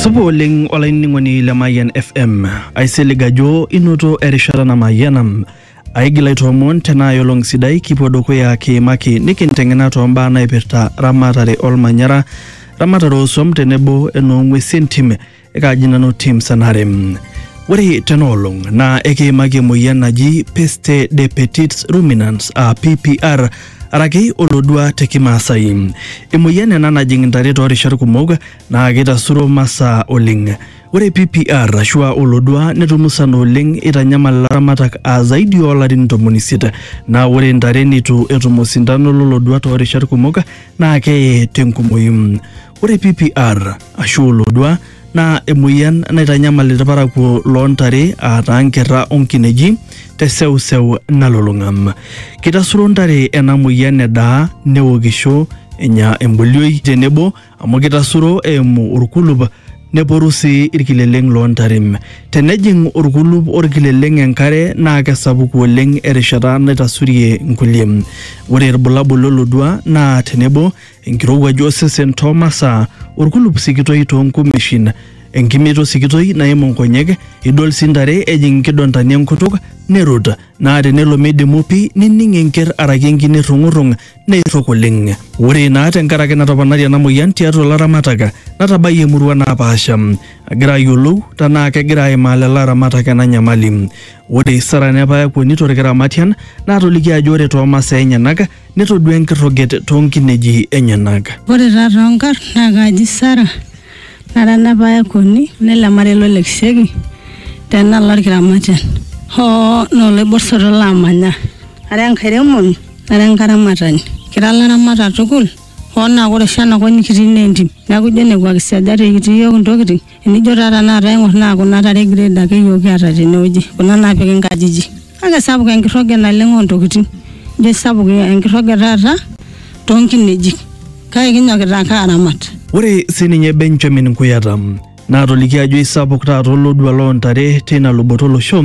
Supa oleng olainining'oni le Mayian FM. Aisilig ajo inoto erishata namayiana. Aigil aitoomon tenaa olong sidai kipuo dukuya kiimaki nikinteng'ena toombaa naipirta ramatare olmanyara, ramatare oosuam tenebo enoong'uesi entim ekaaji nanu tim sanare ore tena olong naa ekiimaki emoyian naji peste de petits ruminants aa ppr araki olodua te kimaasai emoyian ena najing intare toorishat kumok naa keitasuro masaa oleng ore ppr ashua olodua netum musana oleng eitanyamal ilaramatak aa zaidi oolarin ntomoni isiet naa ore intare neitu etum osindano lolodua toorishat kumok naa keye tenkumoyu Ore PPR ashu olodua naa emueyian naitanyamal ilparakuo loo ntare aataa nkerra o nkineji te seuseu nalulung'a. Keitasuro ntare ena mueyian edaa, newokisho, enya embolioi tenebo amu keitasuro eimu olkulup neporu sii ilkileleng loo ntare. Tenejing olkulup o lkileleng enkare naa kesapuku oleng erishata naitasurie nkulie. Ore ilbulabul lo lodua naa tenebo, enkirowuaj osesen too masaa, olkulup sikitoi too nkumeshin, enkimito sikitoi naimu nkonyek, idol sii ntare ejing nkidontani enkutuk nerut, naa tenelo meidimu pi nining enker araki enkine errung'urrung neirrok oleng. Ore naa tenkaraki natoponari ena moyian tiatua ilaramatak natabayie emurua naapaasha agira ayiolou tenaa kegira aimaa lelo aramatak ena nyamali. Ore Sara Nepayakuoni to Lkiramatian naatoliki ajo ore too masaa enyenak netodua enkirroget too nkineji enyenak. Ore taa too nkarn naa kaaji Sara, nara enapa aikoni nele marei lo Lekisheki te nalo olkiramatian, hoo naa oloibor soto laamanya. Ara enkairemoni nara enkaramatani, kira laramatak tukul, hoo naa ore oshi ena kop nikitii naa entim, neaku ijo nekua kisejat ekitii iyiook intokitin. Enijo taa tenakata aing'or naa kuna tare e grade ake iyiook kiata tenewueji kuna naapiki inkajijik kake sapuk enkirroge naleng ontokitin ijo sapuk enkirroge taata tonkinejik kake kinyokita ake aramat. Ore sininye Benjamin Nkuyata naatoliki ajo eisapuk taata olodua loo ntare teina luboto olosho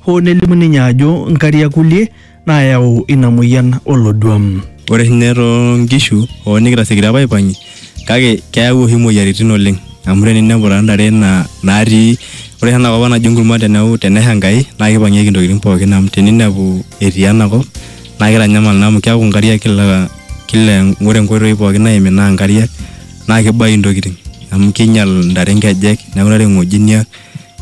hoo nelimu ninye ajo nkariak kulie naayau ina mueyian oloduam. Ore oshi ninye too nkishu hoo nikitasiekito apa aipang'ie kake keyau oshi imoyiaritin oleng amu teninepu taa ntare naa naatii ore oshi enakop ang naji enkurma teneu tenesha Enkai naa kipang'ieki intokitin pookin amu teninepu etii enakop naa kitanyamal naa amu keeku inkariak kila kila ore inkoitoi pookin naimi naa inkariak naa kibayu intokitin amu kinyial intare inkejek neeku intare ing'ojiniak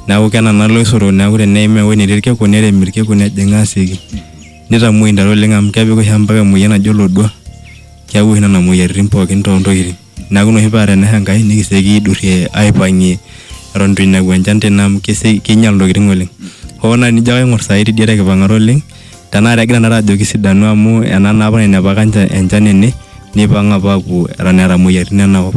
Neaku kenana iloisotok neaku teneim ewueji netii ilkiku nerem ilkiku nejing asioki. Neitamuoi intare oleng amu kepik oshi ompaka emoyian naji olodua. Keaku oshi nena moyiaritin pooki too ntokitin. Neaku ina oshi paa tenesha Enkai nikisioki aidurie aipangie eton eitu einepu enchan tene amu keinyial intokitin oleng. Hoo naa tenijo ake aingor saai teidie tekipangata oleng Tenakata egira tenakata ajoki sidanu amu ena naa apa nainepaka nche enchan ene, neipang apa apuo eton eeta moyiaritin enakop.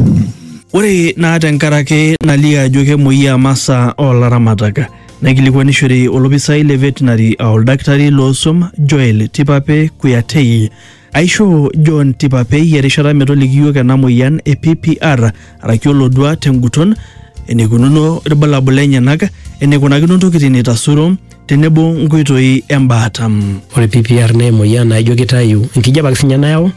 Ore naa tenkaraki nalio ajo kemoyiaa masaa oo laramatak, naikilikuanishore olopisai le Veterinary aa oldakitari loo swam Joel Tipape Kuyatei Aishoo John Tipapei erishata metoliki iyiook ena moyian e PPR araki olodua tenguton, eneikununo ilbulabul lenyenak, eneikunakino ntokitin eitasuro tenebo nkoitoi embaata. Ore PPR naa emoyian naijo keitayu enkijape ake siininye nayau,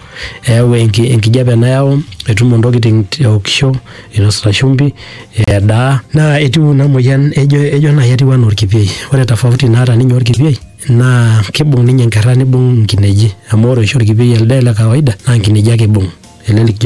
eyau enkijape nayau metumo ntokitin eokisho, einosita shumbi, edaa. Naa etiu ina moyian ejo naaji etiu anaa olkipiei. Ore tofauti naata ninye olkipiei naa kibung ninye nkerra nibung nkineji amu ore oshi orkipei elde le kawaida naa nkineji ake ibung ele likijo